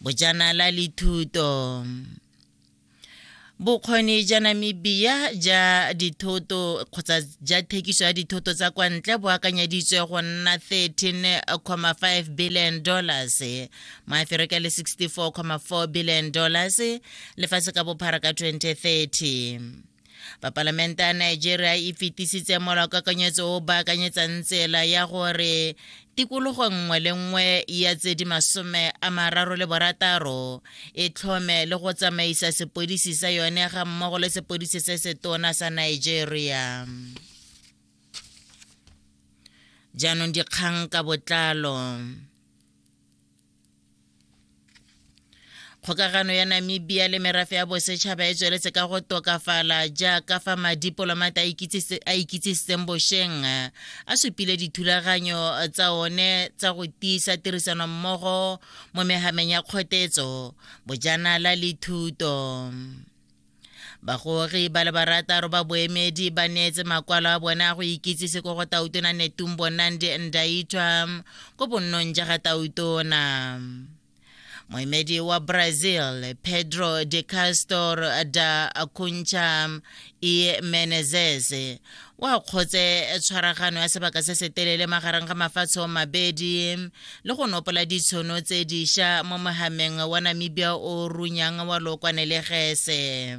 bojanala le thuto bokgoni ja namibia ja dithoto kgotsa ja thekiso ya dithoto tsa kwa ntle bo akanyeditswe go nna 13,5 billion dollars maaferika le 64,4 billion dollars lefatshe ka bophara ka 2030 ba palamente ya nigeria e fetisitse molaokakanyetso o baakanyetsang tsela ya gore tikologo nngwe le nngwe ya tse di masome a mararo le borataro e tlhome le go tsamaisa sepodisi sa yone ga mmogo le sepodisi se se tona sa nigeria jaanong dikgang ka botlalo kgokagano ya namibia le merafe ya bosetšhaba e tsweletse ka go tokafala jaaka fa madipolomata a ikitsisitseng bošeng a supile dithulaganyo tsa one tsa go tiisa tirisanommogo mo megameng ya kgotetso bojanala le thuto bagogi ba le barataro ba boemedi ba neetse makwalo a bone a go ikitsise ko go tautona netumbo nandi ndaitwa ko bonnong ja ga tautona moemedi wa brazil pedro de castor da cuncha e menezes wa kgotse eh, tshwaragano ya sebaka se se telele magareng ga mafatshe o mabedi le go nopola ditshono tse diša mo mohameng wa namibia o runyang wa lokwane le gese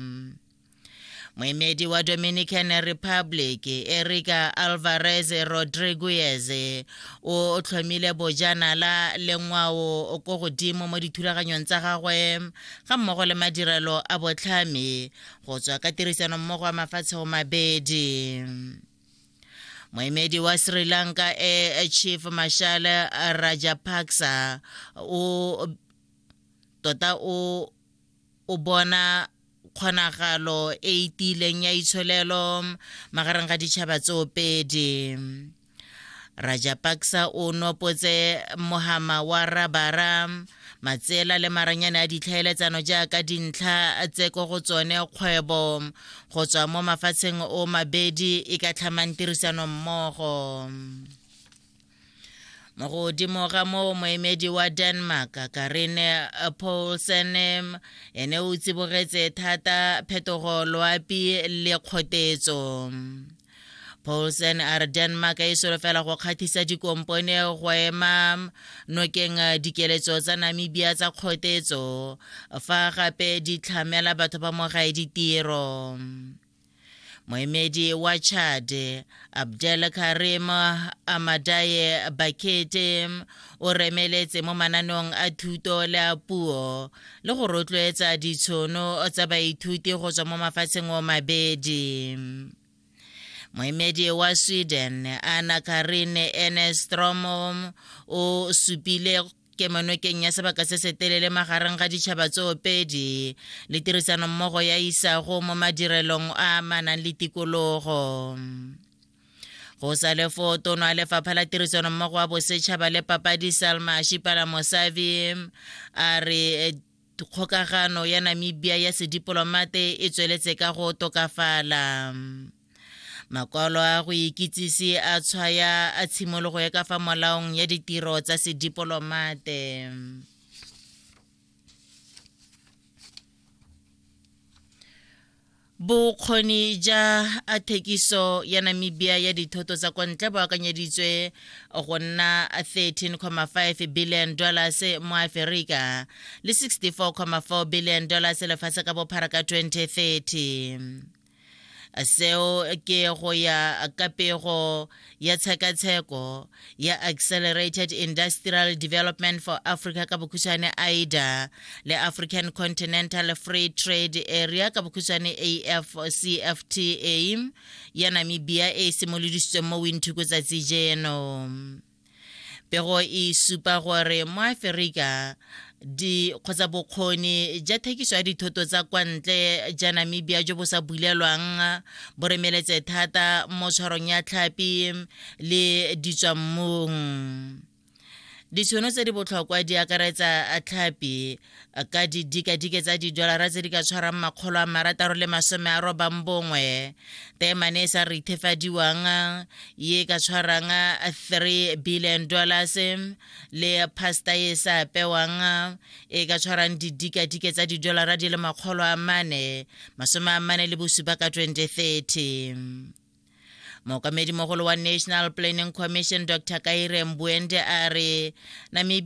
moemedi wa dominican republic erica alvarez rodriguez o tlhomile bojanala le ngwao ko godimo mo dithulaganyong tsa gagwe ga mmogo le madirelo a botlhami go tswa ka tirisanommogo ya mafatshe go mabedi moemedi wa sri lanka e chief marshal rajapaksa o tota o o bona kgonagalo e itileng ya itsholelo magareng ga ditšhaba tsoopedi Rajapaksa o nopotse mohama wa rabara matsela le maranyane a ditlhaeletsano jaaka dintlha tse ko go tsone kgwebo go tswa mo mafatsheng o mabedi e ka tlhamang tirisano mmogo mo godimo ga moo moemedi wa denmark karine paulsen ene o tsibogetse thata phetogo loapi le kgotetso Poulsen a re Denmark e solofela go kgathisa dikompone go ema nokeng eh, dikeletso tsa Namibia tsa kgotetso fa gape di tlhamela batho ba mogae ditiro. Moemedi wa Chad Abdel Karim Amadaye Bakete O remeletse mo mananeong a thuto le a puo le go rotloetsa ditshono tsa baithuti go tswa mo mafatsheng o mabedi. Moemedi wa Sweden, Anna Karin Enestrom, o supile kemonokeng ya sebaka se se telele magareng ga ditšhaba tsoopedi le tirisanommogo ya isago mo madirelong a manang le tikologo. go sa le foo tono a lefapha la tirisano mmogo wa bosetšhaba le papadi salma shipala mosavi a re eh, kgokagano ya namibia ya sedipolomate e tsweletse ka go tokafala makwalo a go ikitsise a tshwaya a tshimologo ya ka fa molaong ya ditiro tsa sedipolomate Bokgoni ja a thekiso ya Namibia ya dithoto tsa kwa ntle bo akanyeditswe go nna 13.5 billion dollars mo Aferika le 64.4 billion dollars lefatshe ka bophara ka 2030. Seo ke go ya ka pego ya tshekatsheko ya Accelerated Industrial Development for Africa ka bokhutshwane AIDA le African Continental Free Trade Area ka bokhutshwane AFCFTA ya Namibia e simolodisitsweng mo Windhoek tsatsi jeno. pego e supa gore mo aferika di kgotsa bokgoni ja thekiso ya dithoto tsa kwa ntle ja namibia jo bo sa bulelwang bo remeletse thata mo tshwarong ya tlhapi le ditswammung ditšhono tse di botlhokwa di akaretsa tlhapi ka didikadike tsa didolara tse di ka tshwarang makgolo a marataro le masome a robang bongwe temane e sa re ithefadiwang ye ka tshwarang 3 billion dollars le pasta e sa apewang e ka tshwarang didikadike tsa didolara di le makgolo a mane masome a mane le bosupa ka 2030 mookamedi mogolo wa national planning commission dr kaire mbuende a re namibia